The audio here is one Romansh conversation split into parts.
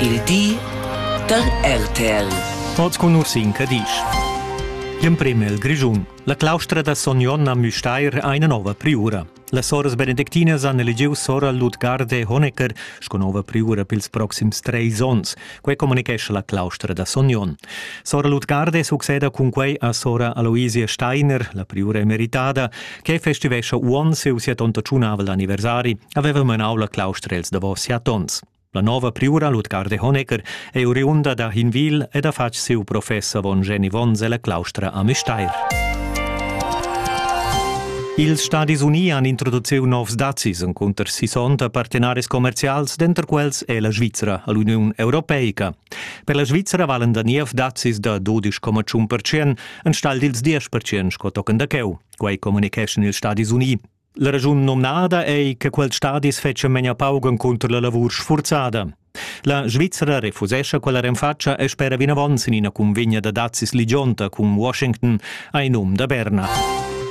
Il di da RTL. Oz cun Ursin Cadisch. Gl'emprem el Grischun. La claustra da Son Jon a Müstair ha ina nova priura. Las soras benedictinas han elegiu sora Ludgarde Honecker sco nova priura pils proxims treis onns. Quei communicescha la claustra da Son Jon. Sora Ludgarde succeda cun quei a sora Aloisia Steiner, la priura emeritada, che festivescha uonn siu siatonta tschunavel anniversari, haveva menau la claustra els davos siat onns. La nova priura Lutgar de Honecker è oriunda da Hinwil ed ha fatg siu professor von Geni Vonz ella claustra a Müstair. Ils Stadis Uni han introduciu novs dazis encunter sissonta partenaris commercials, denter quels è la Svizra all'Uniun Europeica. Per la Svizra valen da niev dazis da 12,5% enstagl dils 10% sco tochen da cheu. Quei communicheschan ils Stadis Uni. La raschun nomnada ei che quels stadis fetschan memia pauc encunter la lavur sfurzada. La Svizzera refusescha quella renfatscha e spera vinavon sin ina convegna da dazis ligionta cun Washington ai num da Berna.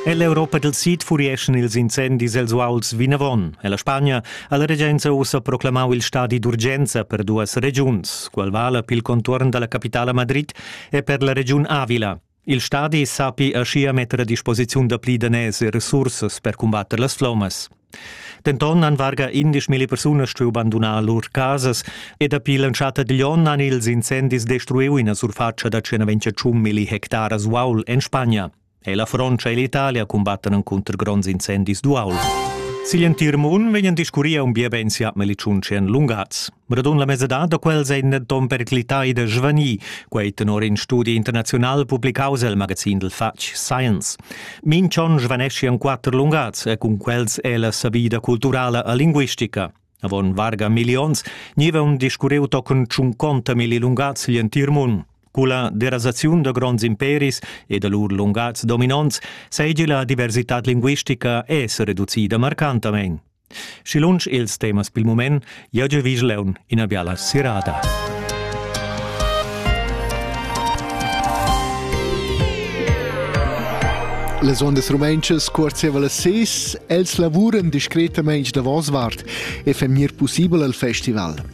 Ell'Europa del Sid furieschan ils incendis els uauls vinavon e la Spagna ha la regenza ussa proclamau il stadi d'urgenza per duas regiuns, qual vala pil contuorn dalla capitala Madrid e per la regiun Avila, Il stadi sappi aschia metter a disposiziun dapli daners e resursas per cumbatter las flommas. Denton han varga indesch milli persunas stuiu bandunar lur casas e dapi l'entschatta digl onn han ils incendis destruiu ina surfatscha da 121 milli hectaras uaul en Spagna. E la Frontscha e l'Italia cumbattan encunter gronds incendis d'uaul. Sigl entir mund vegnan discurria un bia ben siat melicun tschien lungaz. Radun la mesadad da quels ein denton periclitai da svanir, quei tenor in studi internazional publicaus el magazin dil fatg Science. Minchon svanesci en quatter lungats e cun quels è la savida culturala e linguistica. Avon varga millions niva un discurriu tochen tschunconta milli lungats gl'entir mund. Culla derasaziun da gronds imperis e da lur lungats dominonts seigi la diversitad linguistica es reducida marcantamein. Schi lunsch ils temas pil mument, jeu jeu vi leun ina biala sirada. Las ondas rumentschas cuorzeва las ses, els lavuran discretamain davos vart e fa mir possibel al festival.